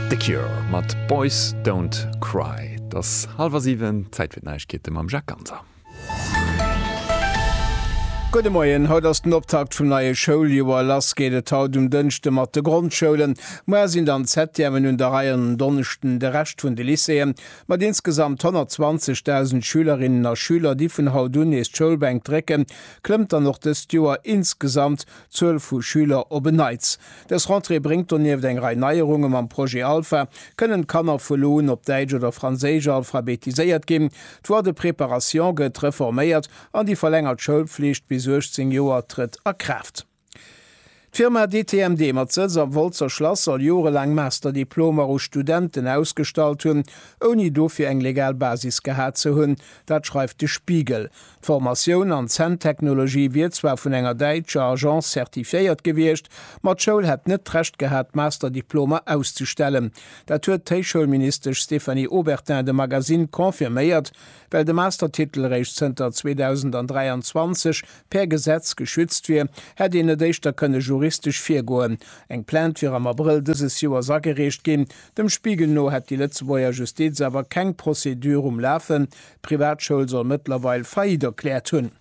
The Cure mat Boys don't cry. Et ass hallwer siwen, Zäit fir d'Neiegkeete mam Jacques Ganser. Gudde Moien, haut ass den Optakt vum neie Schouljoer. Lass geet et haut um Dënschde mat de Grondschoulen. Muer sinn dann d'Septièmen un der Rei an en Donneschden de Rescht vun de Lycéeën. Mat insgesamt 120.000 Schülerinnen a Schüler, déi vun haut un nees d'Schoulbänk drécken, klëmmt dann och dëst Joer insgesamt Zuel vu Schüler op en Neits. Dës Rentrée bréngt donieft eng Rei Neierunge mam Projet Alpha. Kënnen d'Kanner vu lo un op Däitsch oder Franséisch alphabetiséiert ginn? D'Voie de préparation gëtt reforméiert an déi verlängert Schoulpflicht bis 18 Joer trëtt a Kraaft. D'Firma DTMD mat Sëtz am Wolzer Schlass soll jorelaang Master-Diplomer u Studenten ausgestallt hunn, ouni dofir eng legal Basis gehat ze hunn. Dat schreift de Spiegel. D'Formatioun an Zänntechnologie wier zwar vun enger däitscher Agence zertifiéiert gewiescht, ma d'Schoul hätt net d'Recht gehat, d'Masterdiplomer auszustellen. Dat huet d'Héichschoulministesch Stéphanie Obertin dem Magasinn confirméiert, well de Mastertitel réischt zënter 2023 per Gesetz geschützt wier, hätt een net éischter kënne juristesch virgoen. Eng Plainte wier am Abrëll dëses Joers agereecht ginn. Dem Spiegel no hätt déi Lëtzebuerger Justiz awer keng Procédure um Lafen, D'Privatschoul soll mëttlerweil Faillite erkläert hunn.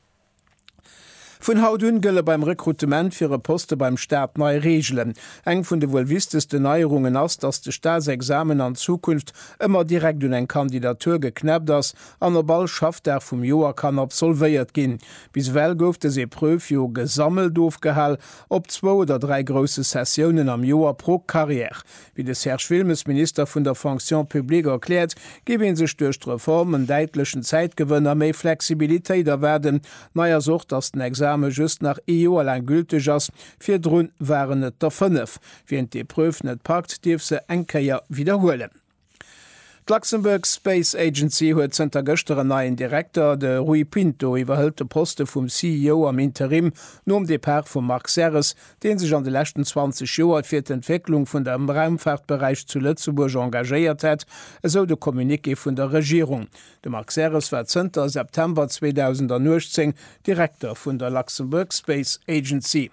Vun haut un gëlle beim Rekrutement fir e Poste beim Staat nei Reegelen. Eng vun de wuel wichtegsten Neierungen ass, dass de Staatsexamen an Zukunft ëmmer direkt un eng Kandidatur geknäppt ass an op all Schaffdag vum Joer kann absolvéiert ginn. Bis ewell gouf dës Epreuve jo gesammelt ofgehal op zwou oder dräi grousse Sessiounen am Joer pro Carrière. Wéi de Serge Wilmes, Minister vun der Fonction publique, erkläert, géif ee sech duerch d'Reform en däitlechen Zäitgewënn a méi Flexibilitéit erwaarden. Nei ass och, datt den Exame just nach ee Joer laang gülteg ass, virdru waren et der fënnef. Wien d'Epreuve net packt, dierf se eng Kéier widderhuelen. D'Luxembourg Space Agency huet zënter gëschter en neien Direkter, de Rui Pinto iwwerhëlt de Poste vum CEO am Interim nom Depart vum Marc Serres, dee sech an de leschten 20 Joer fir d'Entwécklung vun dem Raumfaartberäich zu Lëtzebuerg engagéiert hätt, esou de Communiqué vun der Regierung. De Marc Serres war zënter September 2018 Direkter vun der Luxembourg Space Agency.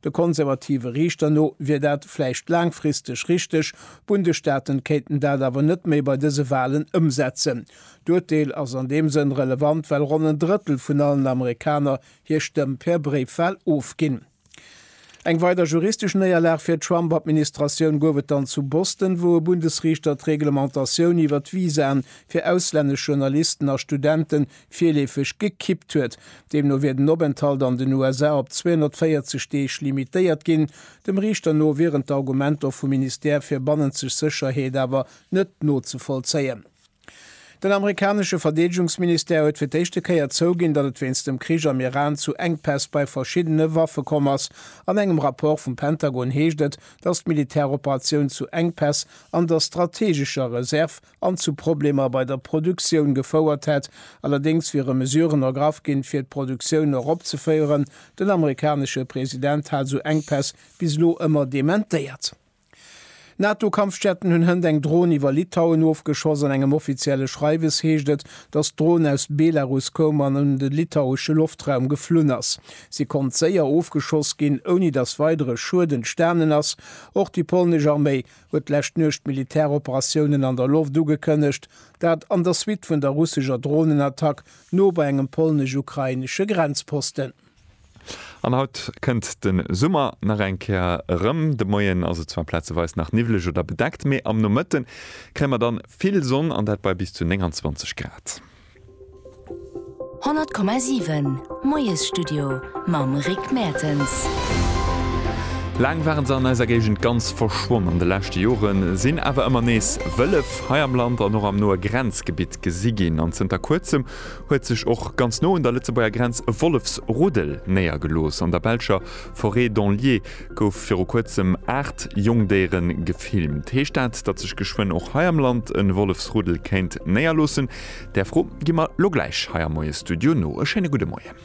De konservative Riichter no wier dat vläicht laangfristeg richteg, d'Bundesstaaten kéinten dat awer net méi bei dëse Walen ëmsetzen. D'Urteel ass an deem Sënn relevant, well ronn en Drëttel vun allen Amerikaner hir Stëmm per Bréifwal ofginn. Eng weider juristesch Néierlag fir d'Trump-Administratioun gouf et dann zu Boston, wou e Bundesriichter d'Reglementatioun iwwer d'Visaen fir auslännesch Journalisten a Studenten virleefeg gekippt huet. Deemno wier den Openthalt an den USA op 240 Deeg limitéiert ginn. Dem Riichter no wieren d'Argumenter vum Ministère fir bannenzeg Sécherheet awer net nozevollzéien. Den amerikanesche Verdeedegungsministère huet fir d'éischte Kéier zouginn, datt et wéinst dem Krich am Iran zu Enkpäss bei verschiddene Waffe komm ass. An engem Rapport vum Pentagon heescht et, datt d'Militäroperatioun zu Enkpäss an der strateegescher Reserve an zu Problemer bei der Produktioun gefouert hätt. Allerdéngs wiere Mesuren ergraff ginn, fir d'Produktioun eropzeféieren. Den amerikanesche President hat esou Enkpäss bis elo ëmmer dementéiert. NATO-Kampfjetten hunn hënt eng Dron iwwer Litauen ofgeschoss. An engem offizielle Schreiwes heescht et, datt d'Dron aus Belarus koum an un de litauesche Loftraum geflunn ass. Si konnt séier ofgeschoss ginn, ouni datt weidere Schued entstanen ass. Och déi polnesch Arméi huet d'lescht Nuecht d'Militäroperatiounen an der Loft ugekënnegt, dat an der Suite vun der russescher Dronenattack no bei engem polnesch-ukrainesche Grenzposten. An haut kënnt de Summer nach eng Kéier erëm. De Moien ass et zwar plazeweis nach niwwleg oder bedeckt, mee am Nomëtte kréie mer dann vill Sonn an dat bei bis zu 29 Grad. 100,7 Moiesstudio mam Rick Mertens. Laang waren se an eiser Géigend ganz verschwonn. An de leschte Jore sinn awer ëmmer nees Wëllef hei am Land an och am noe Grenzgebitt gesi ginn. An zënter Kuerzem huet sech och ganz no un der Lëtzebuerger Grenz e Wollefsruddel néiergelooss an der belscher Forêt d'Anlier. Gouf viru kuerzem 8 Jongdéiere gefilmt. Heescht dat, datt sech geschwënn och hei am Land e Wollefsruddel kéint néierloossen? Där Fro gi mer lo gläich hei am Moie Studio no. E schéine gudde Moien.